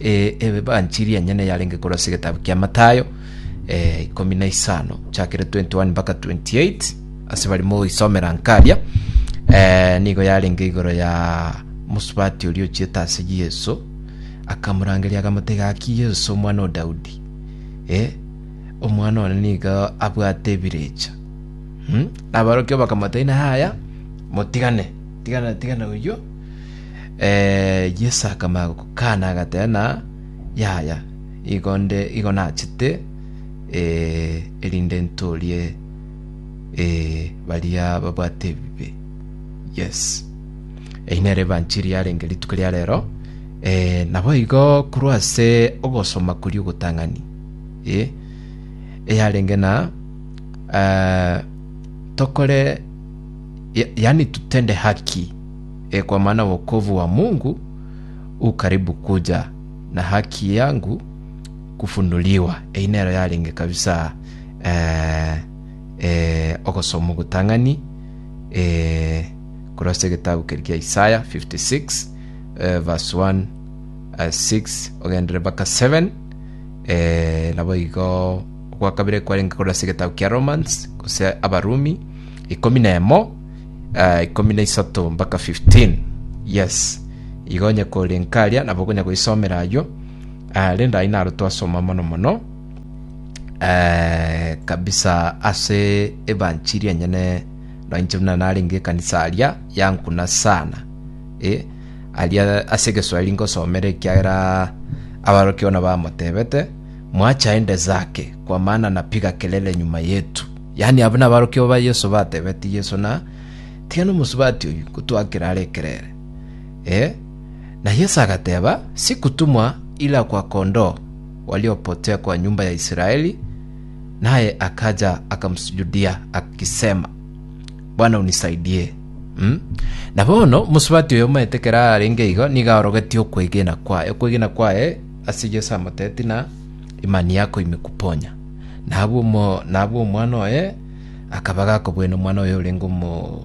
Evanchiri enyene yarenge korwa ase egetabu kia Mathayo ikomi na isano chakere 21 mpaka 28 ase bari mogoisomera nka aria nigo yarenge igoro ya mosubati oria ochiete ase Yeso akamorangeria akamotebia gaki Yeso omwana o Daudi omwana one nigo abwate ebirecha. Aborokigwa bakamotebia inee yaya motigane. Tigana, tigana oyio. Eh, Yeso akamanya gokana agateba na yaya, igo nde igo nachete eh, erinde ntorie eh, baria babwate ebibe. Yes. Eyi nere evanchiri yarenge rituko ria rero eh, nabo igo korwa ase ogosoma kuri ogotang'ani eh, eyarenge na eh, tokore yaani tutende haki, e, kwa maana wokovu wa Mungu u karibu kuja, na haki yangu kufunuliwa. Eyi nero yarenge kabisa eh, eh, ogosoma ogotang'ani eh, korwa ase egetabu keri kia Isaya 56 eh, verse 1 eh, 6 ogendere mpaka 7 eh, nabo igo gwakabire kwarenge korwa ase egetabu kia Romans gose Abarumi Ikomi na emo, eh, ikomi na isato mpaka 15 yes igo onye kore nkaria nabo okonya goisomera aywo Ah, rende ayi naro twasoma mono mono eh, kabisa ase ebanchiri enyene noinche buna narenge ekanisa aria yankuna sana eh, aria ase egeswahili nkosomera ekiagera abarokia ona bamotebete mwacha ende zake kwa maana napiga kelele nyuma yetu Yaani abwo nabarokigwa ba Yeso batebetie Yeso ng'a, Tiga nomosubati oyio gotoakere are ekerere. Ee. Na Yeso agateba, Sikutumwa ira kwa kondoo waliopotia kwa nyomba ya Israeli. Naye akaja akamosujudia, agisema, Bwana unisaidie. Mm. Na bono omosubati oyo omaete ekero arenge igo, nigo aorogetie okwegena kwaye. Okwegena kwaye ase Yeso amoteeti na Imani yako ime kuponya. Na abwo omo, na abwo omwana oye akaba gakobwena omwana oye orenge omo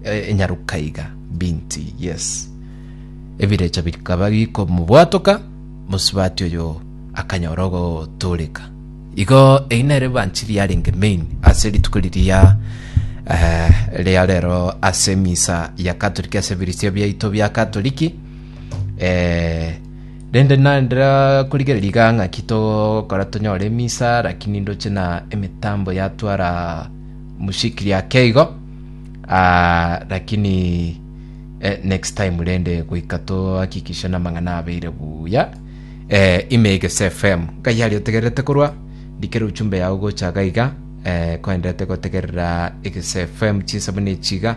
e- enyaruka iga binti yes ebirecha bikaba bikomobwatoka mosubati oyo akanyora ogotooreka igo eyi nere evanchili yarenge main ase rituko riria eh, ria rero ase emisa ya katoliki ase ebirisio biaito bia katoliki eh, Rende nare korigereria igaa ng'aki togokora tonyore emisa, lakini ndoche na emitambo yatwara mushikiri ake igo, ah, lakini eh, next time rende goika toakikishe namang'ana abeire buya. Eh, ime egese FM ngai aria otegererete korwa ndikere uchumbe yao gocha iga iga, eh, koenderete gotegerera egese FM chinsemo nechiga.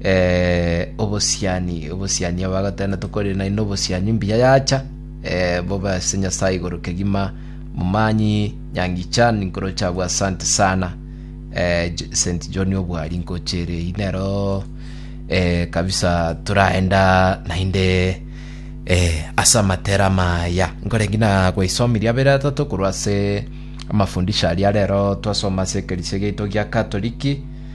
Eh, obosiani, obosiani aba agoteba natokorire naye nobosiani mbuya yacha. Eh, bobe ase Nyasaye igoro kegima. Momanyi nyangicha ninkoroche abwo asante sana. Eh, J- St. John obwari nkochere eyi nero eh, kabisa toraenda naende eh, ase amatera maya nkorengi na gwaisomirie abere atato korwa ase amafundisho aria rero twasoma ase ekerisia giaito gia katoliki